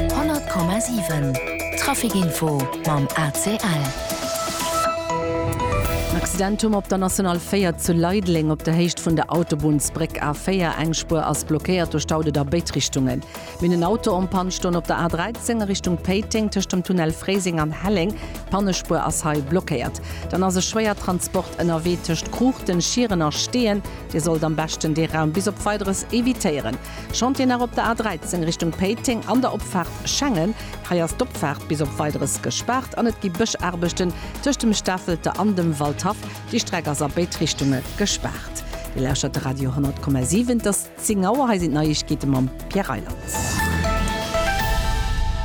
100,7 Trafic-Info mam ACL. En Accident um op der National 4 zu Leideleng op der Héicht vun der Autobunnsbréck A4. Eng Spuer ass blockéiert duerch d'Autoen a béid Richtungen. Minn en Auto en Panne stoung op der A13 a Richtung Péiteng tëscht dem Tunnel Fréiseng an Helleng. D'Pannespuer ass hei blockéiert. Dann ass e Schwéiertransport ënnerwee tëscht Kruuchten, Schieren a Steeën. Dir sollt am beschten dee Raum bis op Weideres evitéieren. Chantier nach op der A13 Richtung Péiteng an der Opfaart Schengen. Hei ass d'Opfaart bis op Weideres gespaart an et gi Bëschaarbechten tëscht dem Stafelter an dem Waldhaff. Déi Streck ass a béid Richtunge gespaart. Dir lauschtert de Radio 10,7. Et ass 10 Auer. Hei sinn d'Neiegkeete mam Pierre Reyland.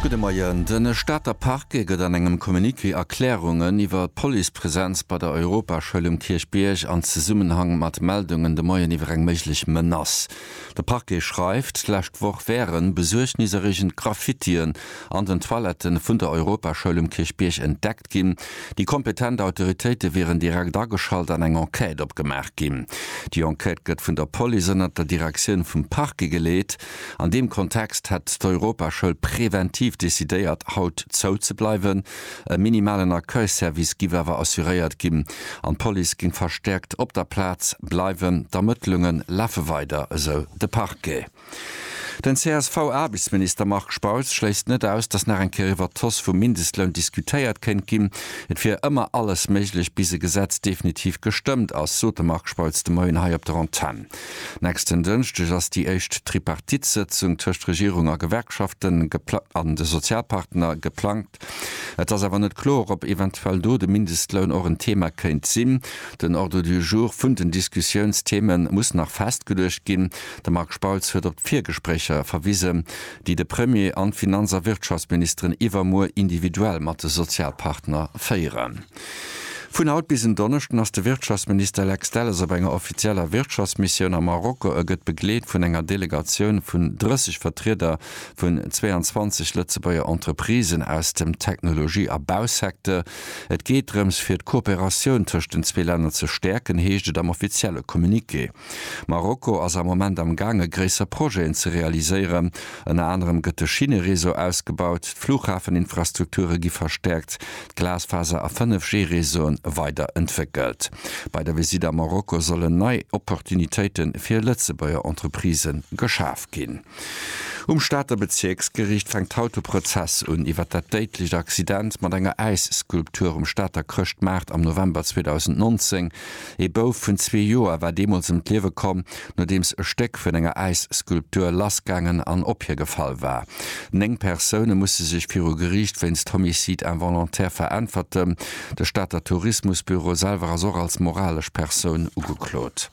Gudde Moien. De Stater Parquet gëtt an engem Communiqué Erklärungen iwwer d'Policepresenz bei der Europaschoul um Kierchbierg an Zesummenhang mat Meldungen de Moien iwwer eng méiglech Menace. De Parquet schreift, d'lescht Woch wären besuergniserreegend Graffitien an den Toiletten vun der Europaschoul um Kierchbierg entdeckt ginn. Déi kompetent Autoritéite wieren direkt ageschalt an eng Enquête opgemaach ginn. Déi Enquête gëtt vun der Police ënnert der Direktioun vum Parquet geleet. An deem Kontext hätt d'Europaschoul preventiv decidéiert, haut zou ze bleiwen. E minimalen Accueil-Service giff awer assuréiert ginn an d'Police géing verstäerkt op der Plaz bleiwen. D'Ermëttlunge lafe weider, esou de Parquet. Den CSV-Aarbechtsminister Marc Spautz schléisst net aus, datt nach eng Kéier iwwert d'Hausse vum Mindestloun diskutéiert kéint ginn. Et wier ëmmer alles méiglech, bis e Gesetz definitiv gestëmmt ass, sot de Marc Spautz de Moien hei op der Antenn. Nächsten Dënschdeg ass déi éischt Tripartite-Sëtzung tëscht Regierung a Gewerkschaften an de Sozialpartner geplangt. Et ass awer net kloer, ob eventuell do de Mindestloun och en Thema kéint sinn. Den Ordre du jour vun den Diskussiounstheme muss nach festgeluecht ginn. De Marc Spautz huet op d'Virgespréicher verwisen, déi de Premier an d'Finanz a Wirtschaftsministeren iwwermuer individuell mat de Sozialpartner féieren. Vun haut bis en Donneschden ass de Wirtschaftsminister Lex Delles op enger offizieller Wirtschaftsmissioun a Marokko. E gëtt begleet vun enger Delegatioun vun 30 Vertrieder vun 22 Lëtzebuerger Entreprisen aus dem Technologie a Bausecteur. Et geet drëms, fir d'Kooperatioun tëscht den zwee Länner ze stäerken, heescht et am offizielle Communiqué. Marokko ass am Moment am gaange gréisser Projeten ze realiséieren. Ënner anerem gëtt de Schinnereseau ausgebaut, d'Flughafeninfrastrukture gi verstäerkt, d'Glasfaser a 5G-Reseauen weider entwéckelt. Bei der Visitt a Marokko sollen nei Opportunitéite fir Lëtzebuerger Entreprisë geschaf ginn. Um Stater Bezierksgeriicht fänkt haut de Prozess un iwwer dat déidlecht Accident mat enger Äisskulptur um Stater Chrëschtmaart am November 2019. Ee Bouf vun zwee Joer war deemools ëm d'Liewe komm, nodeems e Stéck vun enger Äisskulptur lassgaangen an op hie gefall war. Néng Persoune musse sech viru Geriicht wéinst Homicide involontaire veräntwerten. De Stater Tourismusbüro selwer ass och als moralesch Persoun ugeklot.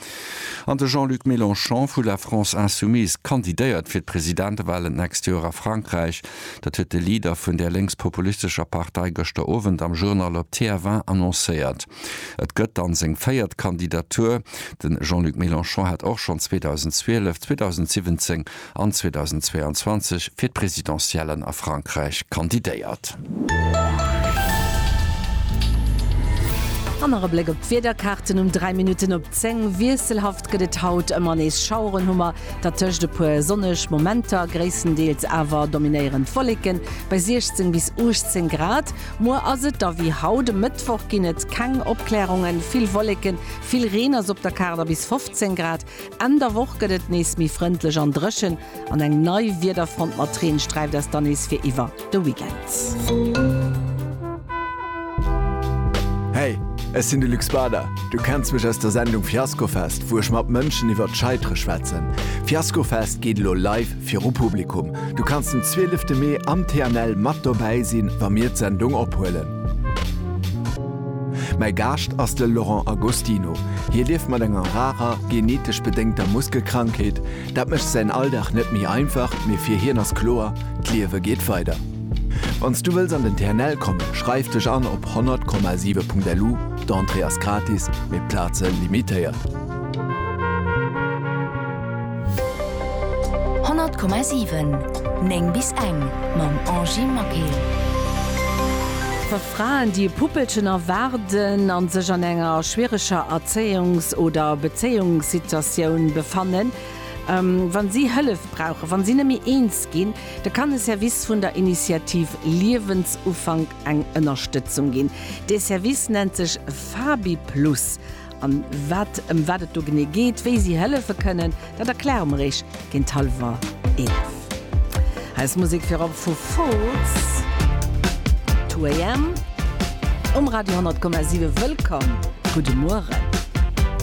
An de Jean-Luc Mélenchon vu La France Insoumise kandidéiert fir d'Presidentewahlen d'nächst Joer a Frankräich. Dat huet de Leader vun där lénks-populistescher Partei gëschter Owend am Journal op TF1 annoncéiert. Et gëtt dann seng véiert Kandidatur. De Jean-Luc Mélenchon hat och schonn 2012, 2017 an 2022 fir d'Presidentiellen a Frankräich kandidéiert. An nach e Bléck op d'Wiederkaarten um 3 Minutten op 10. Wiesselhaft gëtt et haut, ëmmer nees Schaueren hu mer, dertëscht e puer sonneg Momenter, gréisstendeels awer dominéierend Wolleken bei 16 bis 18 Grad. Muer ass et da wéi haut, e Mëttwoch ginn et keng Opklärungen, vill Wolleken, vill Reen ass op der Kaart a bis 15 Grad. Enn der Woch gëtt et nees méi frëndlech an dréchen an eng nei Wiederfront mat Reen sträift eis dann nees fir iwwer de Weekend. Hey, ech sinn de Luc Spada. Du kenns mech aus der Sendung Fiaskofest, wou ech mat Mënschen iwwer d'Scheitere schwätzen. Fiaskofest geet elo live viru Publikum. Du kanns den 12 Mee am TNL mat dobäi sinn, wa mir d'Sendung ophuelen. Mäi Gaascht ass de Laurent Agostino. Hie lieft mat enger rarer, genetesch bedéngter Muskelkrankheet. Dat mécht säin Alldag net méi einfach, mee fir hien ass kloer, D'Liewe geet weider. Wann s du wëlls an den TNL kommen, schreif dech an op 100,7.lu, d'Entrée ass gratis, mee d'Plaze limitéiert. 100,7 9 bis eng mam Angie Maquil. Wa Fraen déi e Puppelchen erwaarden a sech an enger schwiereger Erzéiungs oder Bezéiungssituatioun befannen, wa si Hëllef brauchen, wa si net méi eens ginn, da kann e Service vun der Initiativ Liewensufank eng Ënnerstëtzung ginn. Dee Service nennt sech Fabi Plus An wat, ëm wat et do genee geet, wéi si hëllefe kënnen, dat erkläre mer Iech géint hallwer 11. Eis Musek virop vu Foals, Two AM um Radio 100,7. Wëllkomm, gudde Mueren.